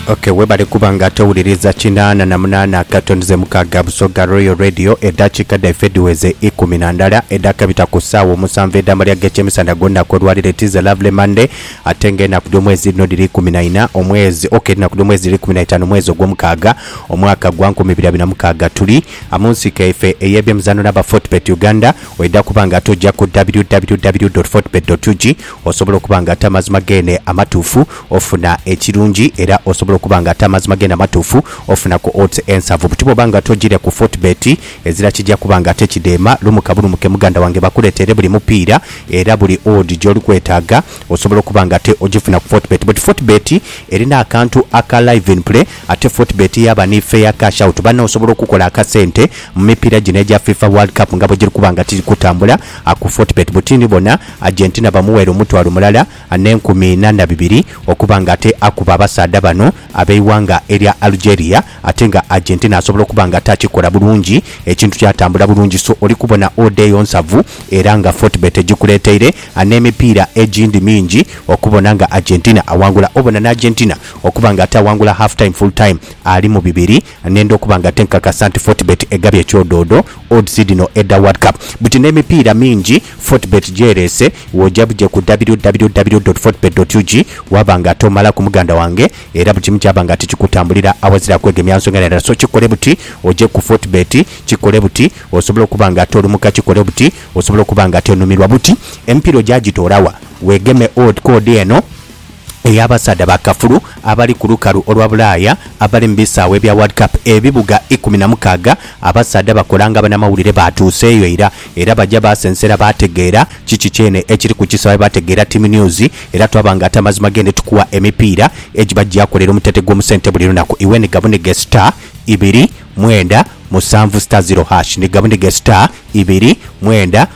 Ok webale kuba nga towuliriza kinaana na munaana akatonze mukaaga Busoga Royal Radio edhakiika dhaife dhiweze ikumi na ndala edhakabita ku saawa omusanvu edhamalya g'ekyemisandha gw'olunaku olwaleero it is a lovely Monday ate nga enaku dh'omwezi dhino dhiri ikumi na ina omwezi ok edhinaku dh'omwezi dhiri ikumi na itaanu omwezi ogw'omukaaga omwaka gwa nkumi ibiri abiri na mukaaga tuli a mu nsiko yaife ey'ebyemizaano n'aba Fortebet Uganda oidha kuba nga tugya ku www.fortebet.ug Osobola okuba nga ate amazima geene amatuufu ofuna ekirungi era osobola okuba nga ate amazima geene amatuufu ofuna ku odds ensavu buti bwoba nga tojiire ku Fortebet ezira kija kuba nga ate kidheema lumuka bulumuke muganda wange bakuleteere buli mupiira era buli odd gyoli kwetaaga osobola okuba nga ate ogifuna ku Fortebet but Fortebet erina akantu aka live in play ate Fortebet yaaba ni fair cash out banno osobola okukola akasente mu mipiira gino egya FIFA World Cup nga bwegiri kuba nga tiri kutambula A Ku Fort Bet Butini bona Argentina bamuweera omutwalo mulala n'enkumi ina na bibiri okuba nga ate akuba abasaadha bano ab'eighanga erya Algeria ate nga Argentina asobola okuba nga ate akikola bulungi ekintu kyatambula bulungi so oli kubona odeeyo nsavu era nga Fortbet egikuleeteire n'emipiira egindi mingi okubona nga Argentina awangula obona n'Argentina okuba nga ate awangula half time, full time ali mu bibiri. Nenda okuba nga tinkakasa nti Fortebet egabye ekyodoodo, odds, dhino edha World Cup. Buti n'emipiira mingi Fortebet gy'ereese, w'oja buje ku www.fortebet.ug waaba nga ate omalaku muganda wange era buli kimu kyaba nga ate kikutambulira awazira kwegemya nsonga ndala. So kikole buti oje ku Fortebet, kikole buti osobole okuba nga ate olumuka, kikole buti osobole okuba nga ate onumirwa. Buti emipiira oja gitoolawa? Weegeme ku ode eno. ey'abasaadha ba kafulu abali ku lukalu olwa Bulaaya abali mu bisaawe ebya World Cup ebibuga ikumi na mukaaga. Abasaadha bakola nga banamawulire baatuuseeyo ira era baja baasensera baategeera kiki kyene ekiri ku kisaawe baategeera Team News era twabanga ati amazima g'ende tukuwa emipiira egiba gyakolera omutete gw'omusente buli lunaku iwe ni Gabunige star ibiri mwenda musanvu star zero hash ni Gabunige star ibiri mwenda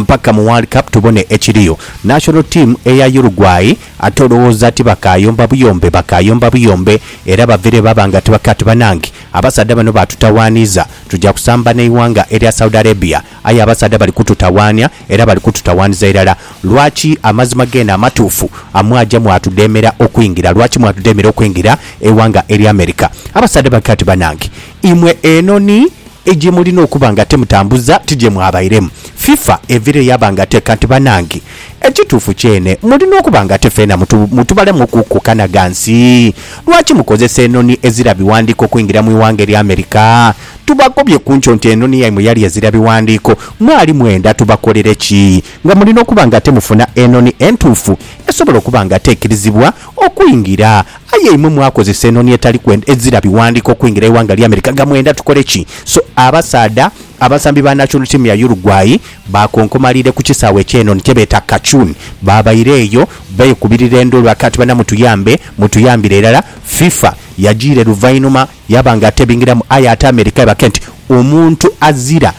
Mpaka mu World Cup tubone ekiriyo. National team eya Uruguay ate olowooza tibakaayomba buyombe? Bakaayomba buyombe era bavire baba nga tibakati banange abasaadha bano baatutawaaniiza tuja kusamba n'eighanga erya Saudi Arabia aye abasaadha bali kututawaania era bali kututawaaniza irala. Lwaki amazima geene amatuufu mwaja mwatudheemera okwingira? Lwaki mwatudheemera okwingira eighanga erya America? Abasaadha bakati banange imwe enhonhi E gye mulina okuba nga temutambuza ti gye mwabairemu. FIFA evire yaba nga teka nti banange, ekituufu kyene mulina okuba nga te feena mutu, mutubalemu ku kukanaga nsi. Lwaki mukozesa enoni ezira biwandiiko okuingira mu iwanga erya America? Tubakobye ku nkyo nti enoni yaimwe yali ezira biwandiiko. Mwali mwenda tubakolere ki? Nga mulina okuba nga temufuna enoni entuufu esobola okuba nga te ekirizibwa okuingira. Aye imwe mwakozesa enoni etali kwenda ezira biwandiko okwingira eighanga lya America nga mwenda tukole ki? So abasaadha abasambi ba national team ya Uruguay bakonkomaliire ku kisaawe ekyenoni kyebeeta Cacun. Baabaire eyo beekubirira enduulu baka ati bana mutuyambe, mutuyambire irala. Fifa yajiire luvainhuma yaba nga tebingiramu aye ate America ebake nti omuntu azira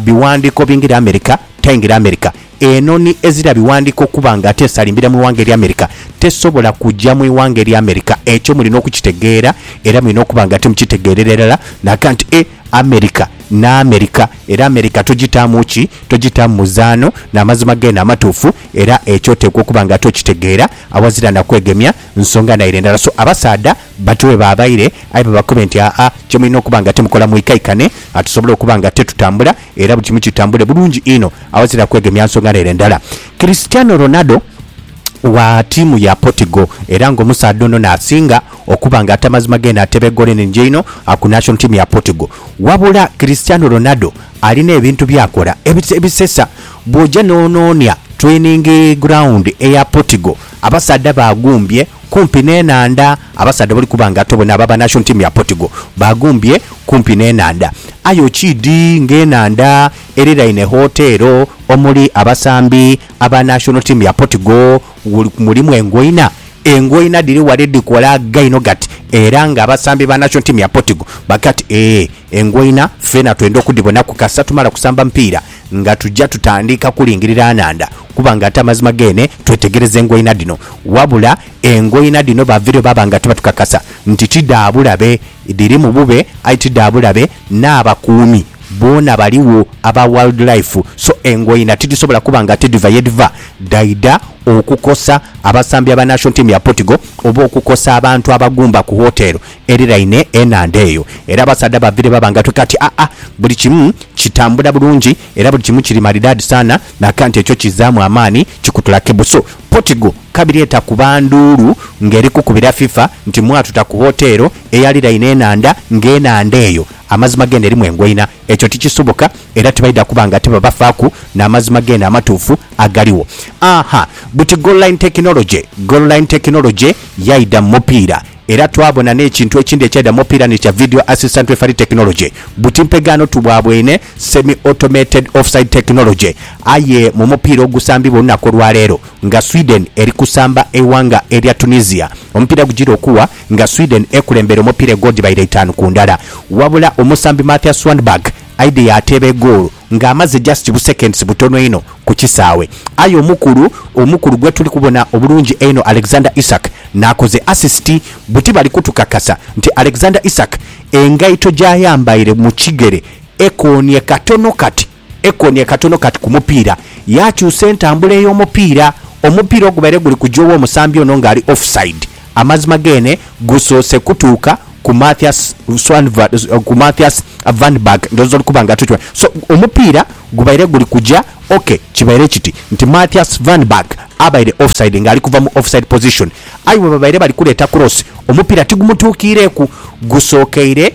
biwandiko bingire America taingira America. Enhonhi ezira bighandiiko okuba nga ate esalimbira mu ighanga erya America tesobola kuja mu ighanga erya America. Ekyo mulina okukitegeera era mulina okuba nga timukitegeerera irala naga nti e America ni America era America togitaamu ki? Togitaamu muzaano n'amazima geene amatuufu era ekyo oteekwa okuba nga ate okitegeera awazira na kwegemya nsonga naire ndala. So abasaadha bati webaabaire aye babakobe nti aa kye mulina okuba nga timukola mwikaikane tusobole okuba nga te tutambula Era buli kimu kitambule bulungi inho aghazira kwegemya nsonga n'ere ndala. Cristiano Ronaldo wa tiimu ya Portugal era ng'omusaadha ono n'asinga okuba ng'ata mazima ge n'ateeba egoolo enhingi einho ku national team ya Portugal. Wabula Cristiano Ronaldo alina ebintu by'akola ebisesa. Bw'oja n'onoonia training ground eya Portugal, Abasaadha baagumbye kumpi n'enhandha. Abasaadha bali kuba nga tobona abo aba national team ya Portugal baagumbye kumpi n'enhandha. Aye okiidhi ng'enhandha eriraine hoteero omuli abasambi aba national team ya Portugal mulimu engoina. Engoina dhiri ghale dhikola gaino ghati era ng'abasambi ba national team ya Portugal baga ati, Ee, engoina feena twenda okudhibonaku kasita tumala kusamba mupiira nga tuja tutandika kulingirira nhandha. Kuba nga ate amazima geene twetegereza engoina dhino. Wabula engoina dhino baavireyo baaba nga tibatukakasa nti ti dha bulabe. Dhirimu bube aye ti dha bulabe, n'abakuumi boona baligho aba Wildlife so engoina tidhisobola kuba nga ate dhiva ye dhiva dhaidha okukosa abasambi aba Nation Team ya Portugal oba okukosa abantu abagumba ku hotel eriraine enhandha eyo. Era abasaadha baavireyo baaba nga twekaka nti, Aa, buli kimu kitambula bulungi era buli kimu kiri maridadi sana. Laka nti ekyo kizzaamu amaani, kikutula kibusu. Portugal kabiri etakuba nduulu ng'eri kukubira FIFA nti mwatuta ku woteero eyaliraine enhandha ng'enhandha eyo amazima geene erimu engoina. Ekyo tikisoboka era tibaidha kuba nga tibabafaaku n'amazima geene amatuufu agaliwo. Ahaa, buti goalline technology! Goalline technology yaidha mu mupiira. Era twabona n'ekintu ekindi ekya The More Pyramid kya Video Assistant Referee Technology, buti mpegaano tu bwa bwene semi-automated offside technology. Aye mu mupiira ogusambibwa olunaku olwaleero nga Sweden eri kusamba eighanga erya Tunisia, omupiira gugira okuwa nga Sweden ekulembera omupiira egoodi baire itaanu ku ndala. Wabula omusambi Mathias Swanberg Aidha yaateeba egoolo ng'amaze just bu seconds butono inho ku kisaawe. Aye omukulu omukulu gwe tuli kubona obulungi einho Alexander Isak n'akoze assist. Buti bali kutukakasa nti Alexander Isak engaito gy'ayambaire mu kigere ekoonye katono kati, ekoonye katono kati ku mupiira yaakyusa entambula ey'omupiira, omupiira ogubaire guli kugya ow'omusambi ono ng'ali offside. Amazima gene gusoose kutuuka ku Mathias Swanva ku Mathias Vanberg ndhooza oli kuba nga atukimanyi. So, omupiira gubaire guli kuja ok, kibaire kiti nti Mathias Vanberg abaire offside ng'ali kuva mu offside position aye bwe babaire bali kuleeta cross omupiira tigumutuukiireku, gusookeire.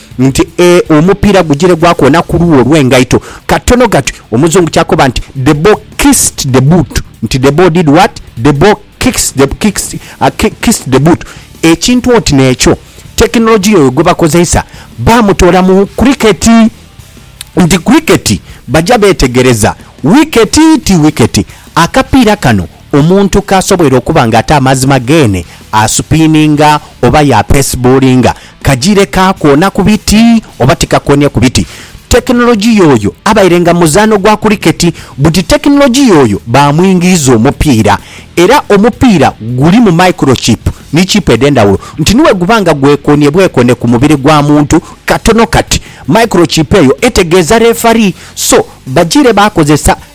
nti ee omupiira gugire gwakoona ku luuwo lw'engaito katono gati Omuzungu ky'akoba nti, The ball kissed the boot nti the ball did what? The ball kicks the kicks a kissed the boot ekintu oti n'ekyo. Tekinologiya oyo gwe bakozeisa baamutoola mu kuriketi nti kuriketi baja beetegereza wiketi ti wiketi akapiira kano. Omuntu k'asobweire okuba nga ate amazima geene asupiininga oba yaapesibuulinga kajiire kaakoona ku biti oba tikakoonie ku biti, tekinologiya oyo abaire nga muzaano gwa kuliketi buti tekinologiya oyo baamwingiiza omupiira era omupiira gulimu microchip ni chip edh'endhawulo nti ni bwe guba nga gwekoonie bwekoone ku mubiri gwa muntu katono kati microchip eyo etegeeza lefari so bajiire baakozesa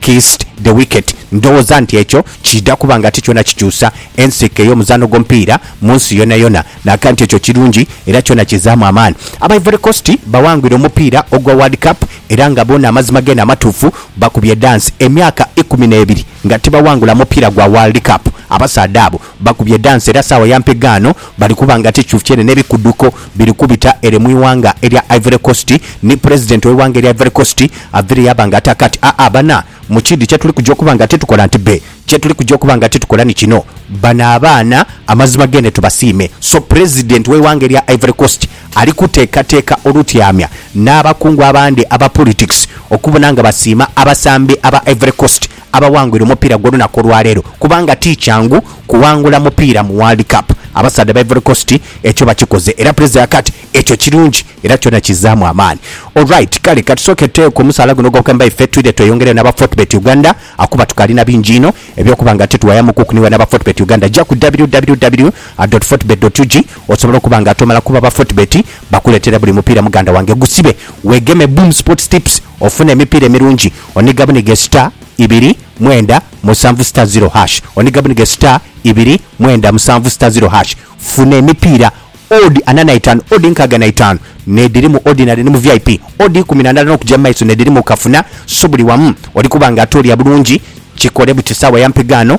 Kissed the wicket. Ndhoghoza nti ekyo kiidha kuba nga ti kyona kikyusa ensiike y'omuzaano gw'omupiira mu nsi yonayona, naga nti ekyo kirungi era kyona kizaamu amaani. Aba Ivory Coast bawangwire omupiira ogwa World Cup era nga boona amazima geene amatuufu bakubye dance emyaka ikumi n'ebiri nga tibawangula mupiira gwa World Cup abasaadha abo. Bakubye dansi era saawa ya mpegaano bali kuba nga tikyufyene n'ebikuduko biri kubita ere mu ighanga erya Ivory Coast ni Pulezidenti w'eighanga erya Ivory Coast avaire yaaba nga ataaka ati, Aa bana, mu kiidhi kye tuli kuja okuba nga titukola nti be, kye tuli kuja okuba nga titukola ni kino, bano abaana amazima geene tubasiime. So Pulezidenti w'eighanga erya Ivory Coast ali kuteekateeka olutyamya n'abakungu abandi aba Politics okubona nga basiima abasambi aba Ivory Coast abawangwire omupiira gw'olunaku olwaleero kubanga ti kyangu kuwangula mupiira mu World Cup. Abasaadha ba Ivory Coast ekyo bakikoze era Prezzo ya Kat ekyo kirungi era kyona kizzaamu amaani. Alright kale katusooke tuteeku omusaala guno ogw'okweemba ife twidhe tweyongereyo n'aba Fortebet Uganda akuba tukaali na bingi inho eby'okuba nga ate tuwayamu kuku niwe n'aba Fortebet Uganda ja ku www.fortebet.ug osobola okuba nga tomala kuba ba Fortebet bakuleetera buli mupiira muganda wange gusibe weegeme Boom Sports Tips Ofuna emipiira emirungi oniga buniga esita ibiri mwenda musanvu sita ziro hash oniga buniga esita ibiri mwenda musanvu sita ziro hash funa emipiira odd ana naitaanu odd nkaaga naitaanu nediri mu ordinary ni mu vip odd ikumi nandala nokuja mumaiso nediri mu kafuna so buli wamu olikuba nga ate olya bulungi kikole buti saawa ya mpigaano